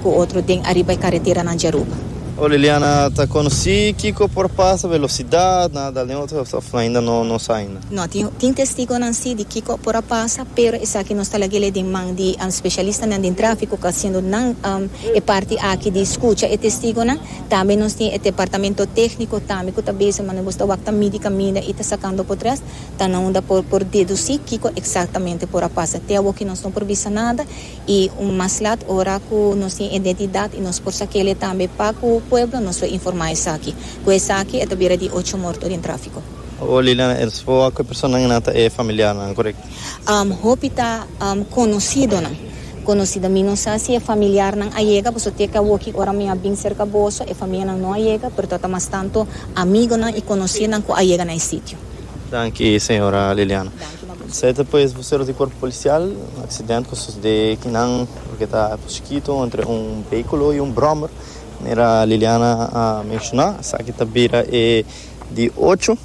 Cu otro den ariba e careteranan dje Aruba. Oh Liliana ta conoci kico por pasa velocidad nan a dal den otro of ainda no no sa ainda. No, tin tin testigonan si di kico por a pasa pero esaki nos ta laguele den man di specialistanan den trafico cu a haciendo nan e parti aki di scucha e testigonan. Tambe nos tin e departamento tecnico tambe cu ta bezig manera nos ta wak ta midi caminda y ta sacando potres ta nan unda por por deduci kico exactamente por a pasa. Te awoki nos no por bisa nada. y un mas lat ora cu nos tin identidad y nos por sa kele tambe pa cu pueblo nos lo informa esaki. Cu esaki e ta bira di ocho morto den trafico. Owo Liliana el spo a cu e personanan nan ta e familiarnan corect? Um hopi ta um conocidonan conocido mi no sa si e familiarnan a yega boso te ke awoki ora mi a bin cerca boso e famianan no a yega pero ta ta mas tanto amigonan y conocidonan cu a yega na e sitio. Danki señora Liliana. Sete pues voceros di cuerpo policial, un accidente cu a sucede aki nan loke ta Cusquito entre un vehiculo y un brommer, manera Liliana a menciona esaki ta bira e di ocho,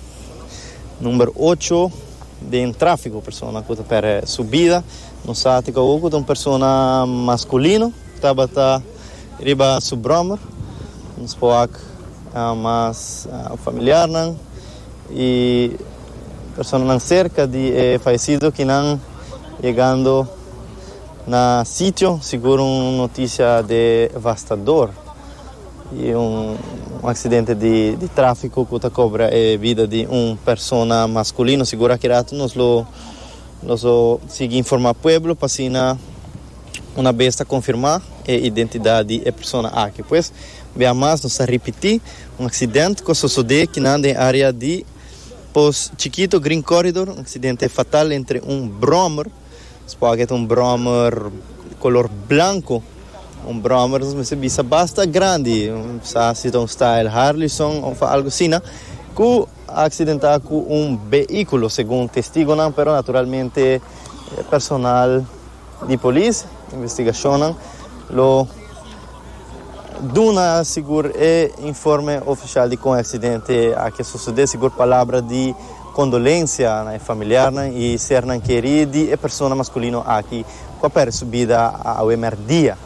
number ocho, den trafico, persona cu ta perde su bida, no sa tika awo cu ta un persona masculino tabata riba su brommer, nos por wak mas familiarnan. y personanan cerca di e fallecido ki nan yegando na sitio sigur un noticia devastador y un accidente di trafico cu ta cobra e vida di un persona masculino sigur aki rato nos lo nos lo sigui informa pueblo pa asina una bes ta confirma e identidad di e persona aki pues bia mas nos ta ripiti. Un aksident ku a sosodé kinan den área di Pos Chikito Green Corridor, un aksidente fatal entre un bròmer, supongo ta un bròmer kolor blanko, un bròmer nos mester bisa basta grandi, sa si ta un style Harlison òf algu asina, ku a aksidentá ku un beíkulo, segun testigonan, pero naturalmente personal. di polis. Investigashonnan lo duna sigur e informe ofishal di kon e aksidente aki a sosodé, sigur palabra di kondolensia na e familiarnan i sernan kerí di e persona maskulino aki ku a pèrdè su bida awe mèrdia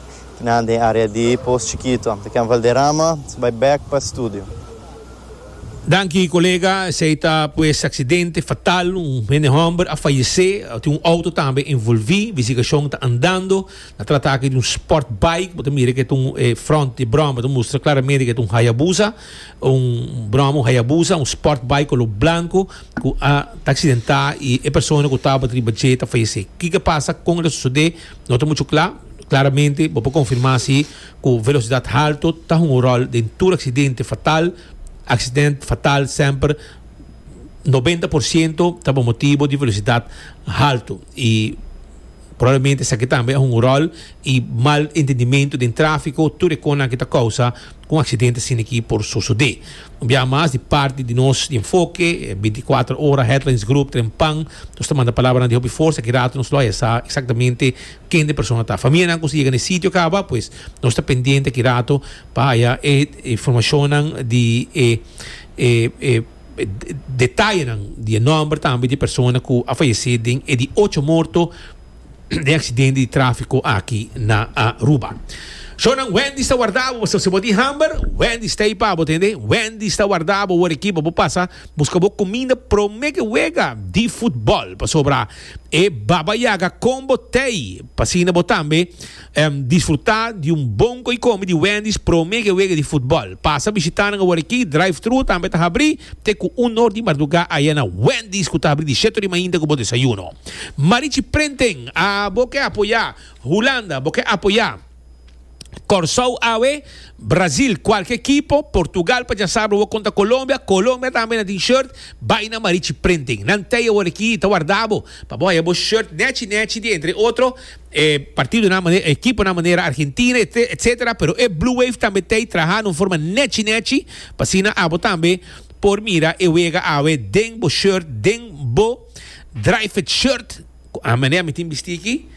na den área di Poos Chikitu. Kem Valderrama bai bèk pa studio. Danki kolega, esei ta pues aksidente fatal, un hende hòmber a fayesé, tin un outo tambe envolví, investigashon ta andando, na trata aki di un sport bike, bo ta mira ke ta un, e front di bròma ta mustra klaramente ke ta un Hayabusa, un bròma un Hayabusa, un sport bike koló blanku ku a ta aksidentá i e persona ku tabata riba dje ta fayesé. Kiko a pasa, kon el a sosodé, no ta muchu kla, klaramente bo por konfirmá si. Ku velosidat haltu ta hunga un ròl den tur aksidente fatal. Aksident fatal semper nobenta por siento ta por motibu di velosidat haltu. I probablemente esaki tambe a hunga un ròl i mal entendimentu den tráfiko. Tur e konan aki ta kousa ku un aksidente asin aki por sosodé. Un biaha mas di parti di nos enfoke, e bintikuater ora headlines grup tren pan, nos ta manda palabranan di hopi forsa. Ki rato nos lo haya sa eksaktamente. ken e persona ta. Famianan ku yega na e sitio kaba pues nos ta pendiente aki rato pa haya e informashonnan di e e detayenan di e nòmber tambe di e persona ku a fayesé den e di ocho morto den aksidente di tráfiko aki na Aruba. Shownan Wendy's ta wardá bo. Si bo tin hamber, Wendy's ta ei pa bo, tende. Wendy's ta wardá bo wor aki pa bo pasa buska bo kuminda promé ke wega di futbòl. Pasobra. E Baba Yaga con bo t'ey p'asina bo tambe em disfruta di un bon coi come di Wendy's prome ke wega di futbol. Pasa bishita nan awor aki, drive-thru tambe ta habri te cu un nor di marduga aya na Wendy's cu ta habri di sheto rima hinter cu bo desayuno. Marichi Prenten, a bo ke apoya? Hulanda, bo ke apoya? Kòrsou awe, Brazil kualke kipo, Portugal pa djasabra wou konta Kolombia, Kolombia tambe na tin shirt, bai na Marichi Printing. Nan tei aworakí ta wardá bo pa bo haña bo shirt nèchi nèchi di entre otro e partidonan manera, e kiponan manera Argentina e etsetera pero e Blue Wave tambe tei trahá na un forma nèchi nèchi pa asina abo tambe por mira e wega awe den bo shirt, den bo Drijfit shirt. Cu a manera mi tin bisti aki,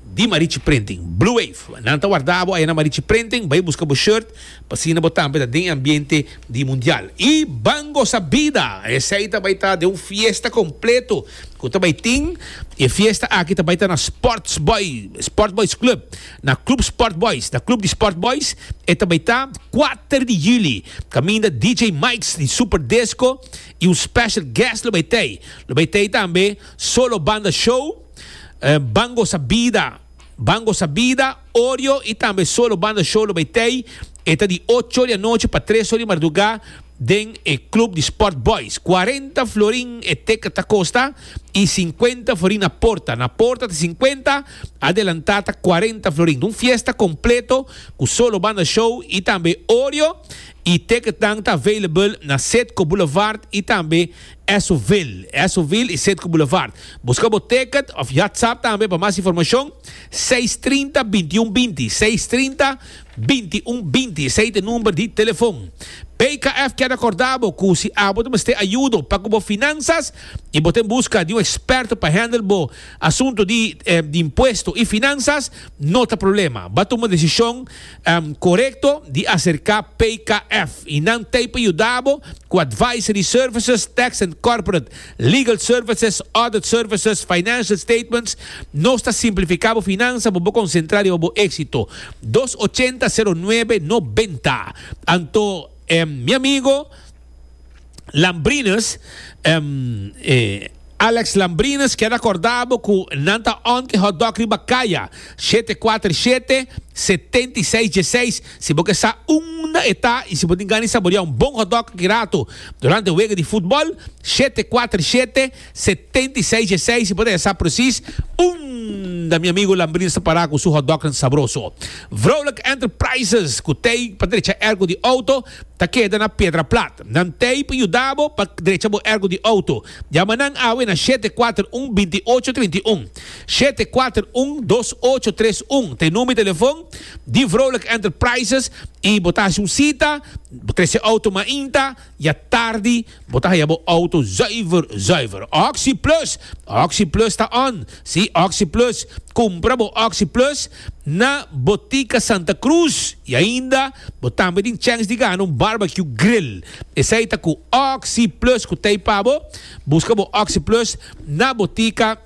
di Marichi Printing, Blue Wave. Nan ta warda bo aye na Marichi Printing, bai busca bo shirt, p'asina bo tambe ta den e ambiente di Mundial. Y ban goza bida! Esey ta bai ta den un fiesta completo cu ta bai tin. E fiesta aki ta bai ta na Sports Boy, Sport Boys Club, na Club Sport Boys, na Club di Sport Boys. E ta bai ta kuater di juli, caminda DJ Mike's di Super Disco y un special guest lo bai t'ey. Lo bai t'ey tambe. Solo Banda Show, Ban Gosa Bida, Ban Gosa Bida, Oreo y tambe Solo Banda Show lo bay tey. E ta di ocho di anochi pa tres or di marduga den e Club di Sport Boys. Cuarenta florin e ticket ta costa y cincuenta florin na porta. Na porta ta cincuenta, adelanta ta cuarenta florin. Ta un fiesta completo cu Solo Banda Show y tambe Oreo y ticketnan ta available na Setco Boulevard y tambe Esso-ville, Esso-ville y Cedco Boulevard. Busca bo ticket of yatsap tambe pa mas informacion seis trinta bintiun binti, seis trinta bintiun binti, esey ta e number di telefon. BKF kier ta corda bo cu si abo ta mester ayudo pa cu bo finanzas y bo ta en busca di un experto pa handle bo asunto di impuesto y finanzas, no ta problema. Ba tuma decision. Korekto di aserká PKF i nan t'ei pa yuda bo ku advisory services, tax and corporate, legal services, audit services, financial statements. Nos ta simplifiká bo finansa pa bo konsentrá riba bo éksito. Dos ochenta, sero nuebe, nobenta. Anto, mi amigo. Lambrines, Alex Lambrines keda kordá bo ku nan ta on ke hotdog riba kaya, shete kuater shete, setenta i seis dieseis. Si bo ke sa unda e ta i si bo tin gana di saboriá un bon hotdog aki ratu durante e wega di futbòl, shete kuater shete, setenta i seis dieseis. Si bo ta ya sa presis unda mi amigu Lambrines ta pará ku su hotdognan sabroso. Vrouwelijk Enterprises, ku tei pa drecha ergo di outo, Ta keda na pedra plat. Nan tape yuda bo pa drecha bo ergo di auto. Yama nan awe na shete kuater un binti ocho trinta i un. Shete kuater un dos ocho tres un ta e number di telefon di Vrolijk Enterprises i bo ta hasi un sita, bo trese auto mainta i a tardi bo ta haya bo auto zuiver zuiver. Oxyplus! Oxyplus ta on! Si, Oxyplus! Kumpra bo Oxyplus! na Botica Santa Cruz y ainda bo tambe tin chance di gana un barbecue grill. Esey ta cu Oxy Plus cu ta ey pa bo. Busca bo Oxy Plus na Botica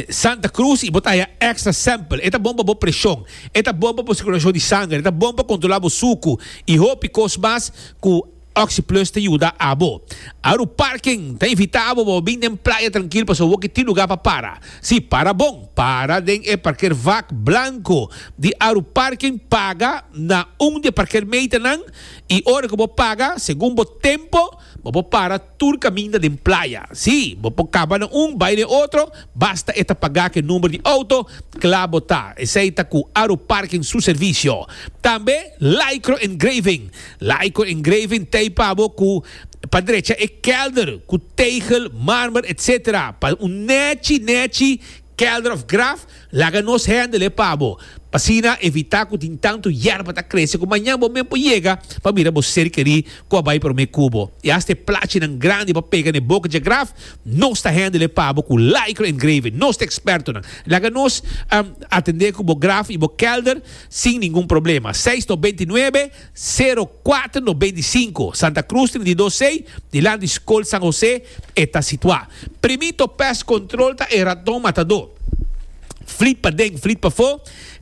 Santa Cruz y bo ta haya extra sample. E ta bon pa bo presion, e ta bon pa bo circulacion di sanger, e ta bon pa controla bo sucu y hopi cos mas cu Oxyplus ta yuda abo. Aru Parking ta invita abo pa bo bin den playa trankil pasobra bo ke tin lugar pa para. Si, para bon! Para den e parkervak blanko di Aru Parking, paga na un di e parkermeternan i ora ku bo paga, segun bo tempo, bo por para tur kaminda den playa. Si, bo por kaba na un, bai na e otro, basta e ta pagá ku e number di outo, kla bo ta. Esei ta ku Aru Parking su servisio. Tambe Lycro Engraving, Laico engraving t'ey pa bo cu pa drecha e kelder cu tegel, marmer etc. Pa un nechi nechi kelder of graf laga nos hendel e pa bo pasina evita cu tin tanto yerba ta crece cu mañan bo men por yega pa mira bo ser queri cu a bay prome cu bo y hasta e plachinan grandi pa pega n'e boca dje graf nos ta hendel e pa bo cu laico engraving nos ta expertonan laga nos atende cu bo graf y bo kelder sin ningun problema seis nobenta y nuebe. Sero kuater no beinti sinku, Santa Krus trinta i dos sei, dilant di Skol San Hosé e ta situá. Primito pèst kontròl ta e raton matadó. Flit paden, flit pafó,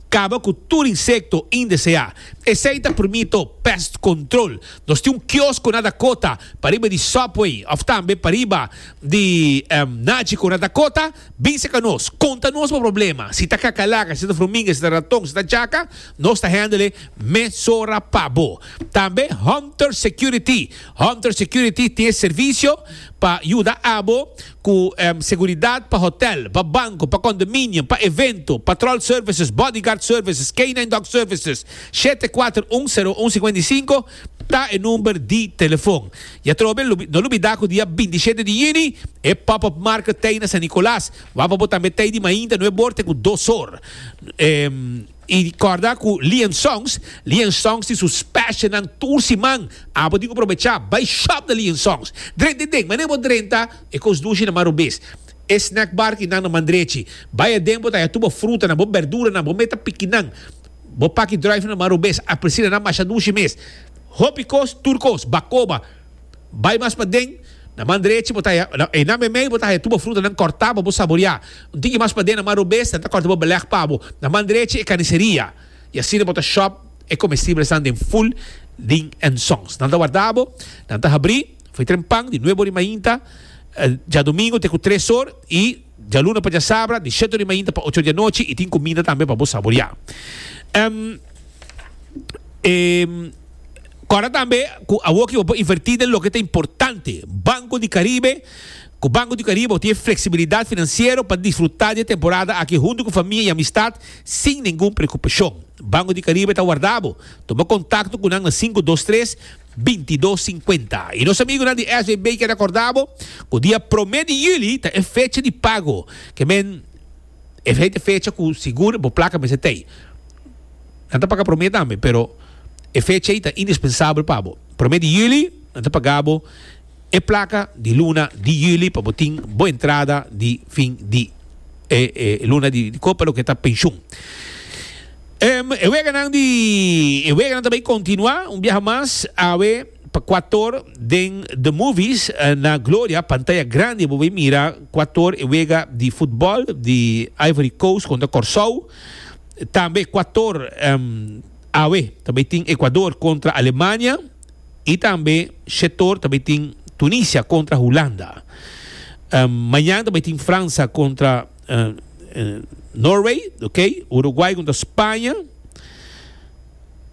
kaba ku tur insekto indeseá. Esei ta Primito pèst kontròl. Nos tin un kiosko na Dakota, pariba di Subway òf tambe pariba di Nachiko na Dakota. Bin serka nos, konta nos bo problema, si ta kakalaka, si ta fruminga, si ta raton, si ta chaka, Nos ta hèndele mesora pa bo. Tambe Hunter Security. Hunter Security tin e servisio pa yuda abo ku seguridat pa hotel, pa banko, pa kondominio, pa evento, patròl services, bodyguard services, canine dog services. Shete kuater un seru un sikuenta i sinku ta e number di telefon. I atrobe no lubidá ku dia bintishete di yüni e pop-up market t'ei na San Nicolas, wak pa bo tambe t'ei di mainta nuebor te ku dos or. I corda cu Lian Songs, Lian Songs tin su specialnan tur siman. Abo tin cu probecha bay shop na Lian Songs. Drenta e den, mane bo drenta e cos dushi na mar rubis, e snack bar tin nan na mandrechi. Bay aden bo ta haya tur bo frutanan, bo berduranan, bo meta pikinan, bo paki drive nan na mar rubis. Aprecina nan masha dushi mes. Hopi cos, tur cos, bacoba. Bai mas paden, na man drechi bo ta haya, na einan meimei bo ta haya tur bo frutanan kòrtá pa bo saboreá. Un tiki mas paden na man robes nan ta kòrta bo belèg pa bo. Na man drechi e kaniseria, i asina bo ta shòp e komestibelesnan den ful di ensons. Nan ta warda bo, nan ta habrí, fritren pan di nuebo rimainta djadumingu te ku tres or i Djaluna pa djasabra, di sheto di mainta pa ocho di anochi y tin cuminda tambe pa bo saboria. Em Em Cora tambe cu awoki bo por inverti den loke ta importante. Banco di Caribe, Cu Banco di Caribe bo tin e flexibilidad financiero pa disfruta di e temporada aki hunto cu famia y amistad sin ningun preocupacion. Banco di Caribe ta warda bo. Tuma contacto cu nan na cinco dos tres. bintidos sinkuenta. I nos amigunan di SVB kier akorda bo ku dia promé di yuli ta e fecha di pago. Ke men esei ta e fecha ku sigur bo plaka mester ta ei. Nan ta paga promé tambe, pero e fecha ei ta indispensabel pa bo. Promé di yuli nan ta paga bo. E plaka di luna di juli pa bo tin bo entrada di fin di e e luna di di kopa loke ta penshun. Em e weganan di e weganan ta bay kontinuá un biaha mas awe pa kua tor den The Movies na Gloria pantaya grandi bo bay mira kua tor e wega di futbòl di Ivory Coast kontra Kòrsou tambe kua tor em awe ta bay tin Ekuador kontra Alemania. Y tambe shetor ta bay tin Tunisia contra Hulanda. Mañan ta bay tin Fransa contra Norway, ok. Uruguay contra Spaña.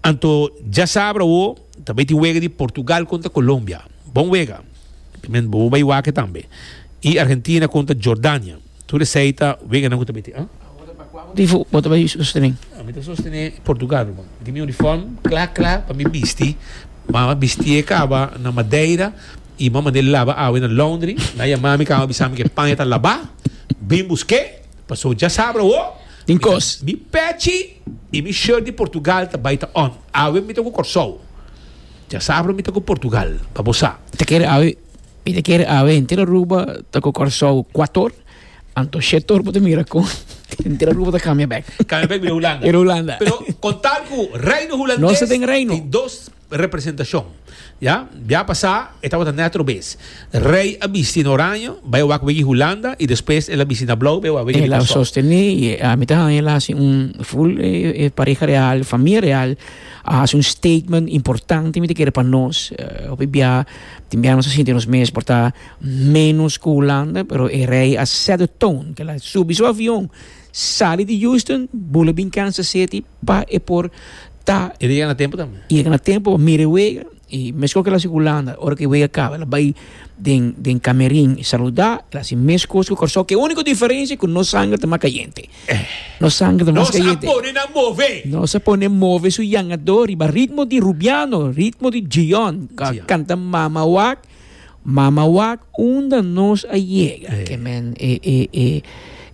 Anto dja sabra awo ta bay tin wega di Portugal contra Colombia. Bon wega. Bo bay wak e tambe. Y Argentina contra Jordania. Tur esei ta weganan ku ta mete, a? Di fu bo ta bai sostené? Mi ta sostené Portugal ruman. Mi tin mi uniform kla kla pa mi bisti. Mama bisti e kaba na Madeira i mama manda e laba awe na laundry. Mi a yamá mi kaba bisami ku e paña ta labá. Bin busk'é pasobra dja sabra awo mi ta mi pechi i mi shirt di Portugal ta bai ta on. Awe mi ta ku Kòrsou. Dja sabra mi ta ku Portugal pa bo sa. Ta kere awe. Mi ta kere awe henter Aruba ta ku Kòrsou kuator anto shetor bo ta mira kon henter Aruba ta kambia bèk. Kambia bèk bira Hulanda. Bira Hulanda. Pero kon tal ku reino hulandes. Nos ta den reino. Tin dos representashon. Ya, bia pasá e tabata nèt robes. Rei a bisti na oraño, bai a wak wiki Hulanda i despues el a bisti na blou, bai a wak wiki di Kòrsou. El a sostené i mi ta haña el a hasi un ful e pareha real, famia real a hasi un statement importante mi ta kere pa nos hopi bia. Tin bia nos a sinti nos mes por ta menos ku Hulanda, pero e rei a set de tone, kila a subi su avion, sali di Houston, bula bin Kansas City pa e por ta. E llega na tempo tambe. Llega na tempo pa mira e wega, i mesun kila si Hulanda, ora ku e wega kaba el a bai den den kamerin saluda, el a hasi mes kos ku Kòrsou, ke úniko diferensia ku nos sanger ta mas kayente. Nos sangre ta mas kayente. Nos a pone move su yangadó riba ritmo di Rubiano, ritmo di Djion, ku a kanta Mama wak, mama wak unda nos a yega. Ke men e e e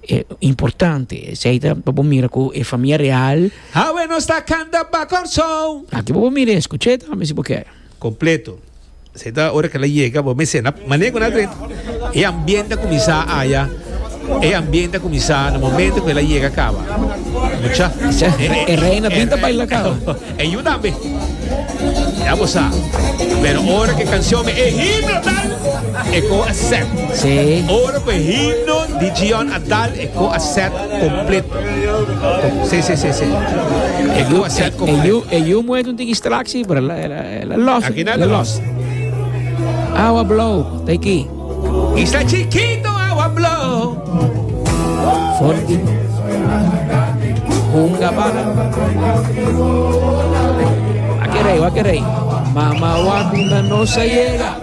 e importante. Esei ta pa bo mira ku e famia real. Awe nos ta kanta Bacorsou. Aki bo por mira e skuché tambe si bo kier. Completo. Esey ta ora cu el a yega, bo mester na mane cu nan a drenta. E ambiente a cuminsa aya, e ambiente a cuminsa na momento cu el a yega caba. Mucha. E reina bint a baila caba. E yu tambe. Ya bo sa. Pero ora cu e cancion mi, e himno tal, e cor a set. Sí. Ora cu e himno di Gion a tal, e cor a set completo. Sí, sí, sí, sí. E cor a set E completo. yu, e yu muet un tin distractie, pero El a lost. Aki nada lost. Awa blow, ta aquí. Isla chiquito, awa blow. Forti. Hunga bala. Aquí rey, aquí rey. Mama wakunda no se llega.